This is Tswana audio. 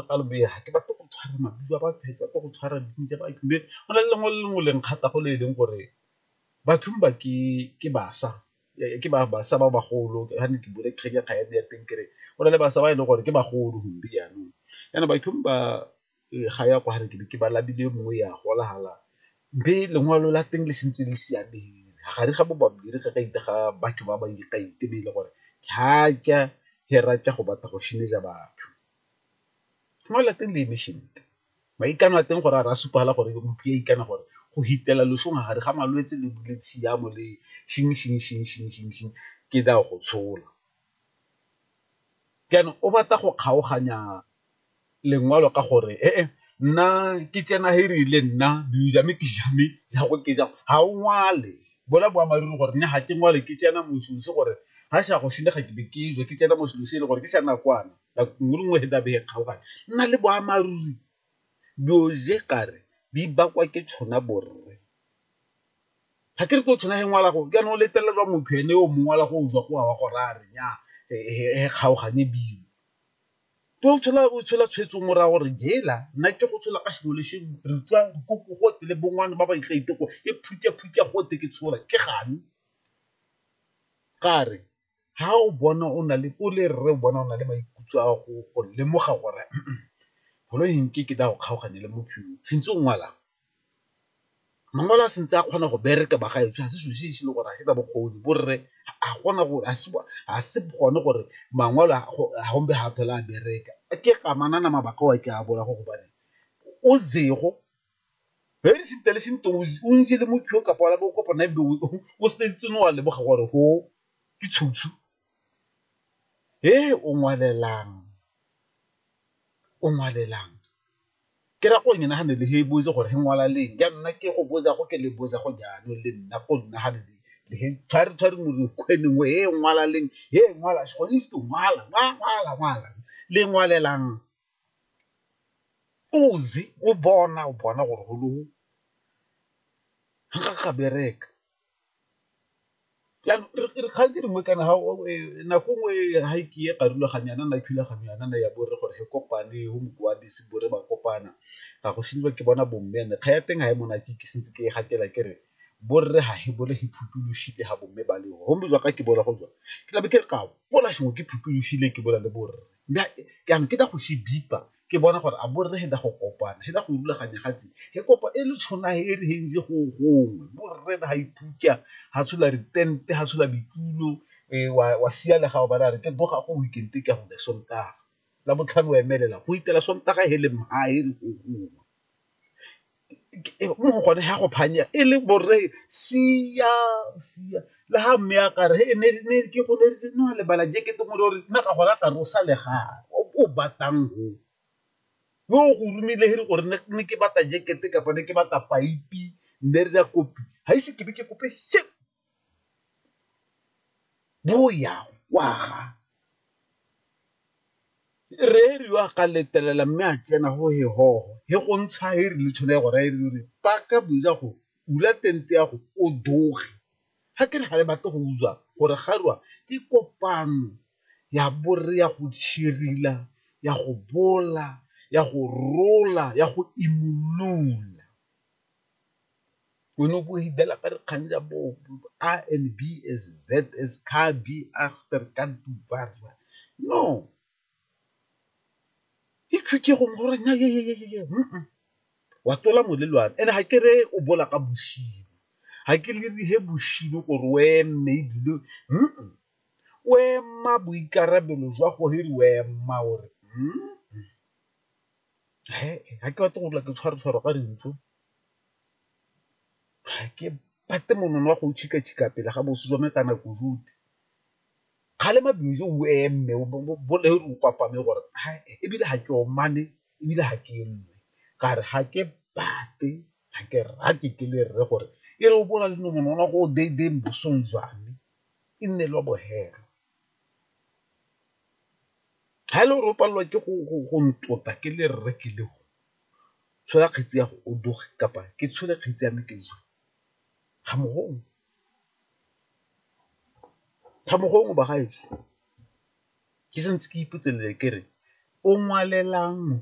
ka lo bega ke batlo go tshwara maduo a batho, ke batlo go tshwara dilo tsa batho, mme go na le lengwe le lengwe le nkgatha go le e leng gore bathong ba ke basa, ke ba basa ba bagolo ga ne ke bone kgang ya kgabane ya teng kere go na le basa ba e leng gore ke bagolo gombe jaanong. Jaanong bathong ba ga ya kwa ke be ke ba labile e mongwe ya gola fela, mme lengwalo la teng le santse le siameng gare ga bo babedi ga batho ba ba e leng gore ga ke a ke a go batla go batho. Mo lateng le maikano a teng gore a re a supagale gore motho yo o ikana gore go hitela losong ga gare ga malwetse le le tshiamo le ke tla go tshola. Jaanong o batla go kgaoganya lengwalo ka gore nna ke tsena he rile nna ga o ngwale bola boammaaruri gore nna ga ke ngwale ke tsena moswi gore ga sa go senya ga ke be ke tswa ke tsena moswi e le gore ke sa nakwana. Ngulungwe he dabe he kgaogane nna le boamaruri byoje kare bi bakwa ke tshona borre. Ga ke re tlo tshona he ngwala go kana o letelelwa motho ene yo mongwe ngwala go jwa go a wa go raya re nya he kgaogane bile tlo tshola o tshola tshwetso morago gore jela nna ke go tshola ka sengwe le sengwe re tswa dikoko gotlhe le bongwana ba ba iteko e phutha phutha gotlhe ke tshola ke gane kare ga o bona o na le o le rre o bona o na le maikutlo a go lemoga gore golo nke ke tla go kgaoganya le motho yo sentse o ngwalang. Mangwalo a santse a kgona go bereka ba ga ešo ga se selo se se le gore ga se na bokgoni borre ga gona gore ga se gone gore mangwalo a gompe ga a tlhole a bereka ke amanang mabaka ao ke a bolela gore gobane o . Very intelligent to o ntse le motho ka pala bo kopana be o setse no wa leboga gore go ke tshutshu. He o ngwalelang, o ngwalelang ke ra go e nagane le he bo itse gore he ngwala leng ya nna ke go botsa go ke le botsa go jalo le nna go nna ga le he tshware tshware mo dikgweding he ngwala leng he ngwala gone se ngwala ngwala ngwala le ngwalelang Uzi o bona o bona gore go le ga ga bereka kgang e nngwe kana nako nngwe ha ke ye ka rulaganya yana na thulaganyo yana na ya bo rre gore re kopane go mokwadisi bo re ba kopana ga go šediwa ke bona bo mme and-e kgang ya teng ga e monate ke santse ke e gatela ke re bo rre ga he bole he phuthulošile ga bo mme ba le go mme jwa ka ke bola go jwa ke tlabe ke re ke a gopola sengwe ke phuthulošile ke bola le bo rre. Mme jaanong ke tla go se bipa ke bona gore a bo rre he da go kopana, he da go rulaganya gatse he kopa e le tshona he re heng je go gongwe bo rre da ha ipuja ha tshola di tente ha tshola ditulo wa siya le ga o bana re ke boga go weekend ke ya go Sontaga, Labotlhano wa emelela go itela Sontaga he le mha he re go gongwe. mo go gone ga go phanya e le borre sia sia le ga mme a kare e ne ke go ne re no lebala je ke teng gore nna ka gona ka re o sa le ga o batlang go yo o go romile he le gore ne ke batla jacket kapa ne ke batla paipi ne re ja kopi ga ise ke be ke kope . bo ya go aga, re riwa ga letela mme a tsena go he hogo he go ntsha he rile tsholo ya go raya re re paka boja go bula tente ya go o doge, ga ke re ga le batle go utswa gore ga rwa ke kopano ya bore ya go tšhirila ya go bola ya go rola ya go imolola. Konopo hidela ka dikgang ja bo A and B as Z as car B after ka dubarwa. No. He chuke go mo gore nya ye ye ye ye. Wa tlola molelwane and ha ke re o bola ka boshimo. Ha ke le re he boshimo gore o eme ebile o ema boikarabelo jwa gore o ema gore. ga ke batle go dula ke tshwaratshwara ka dintlo, ga ke batle monono wa go pele ga boso jwa me kana kuduti, kgale mabele o eme o kopame gore ebile ga ke omane ebile ga ke eme ka re ga ke batle ga ke rate ke le rre gore e re o bo o na le monono wa gore o bosong jwa me e nne le wa bohelo. ga e le gore o palelwa ke go ntota ke le rre ke le o tshola kgetsi ya go o doge kapa ke tshole kgetsi ya me ke jwa ga mo gongwe ga mo gongwe ba gaetsho ke santse ke ipotse le ke re o ngwalelang.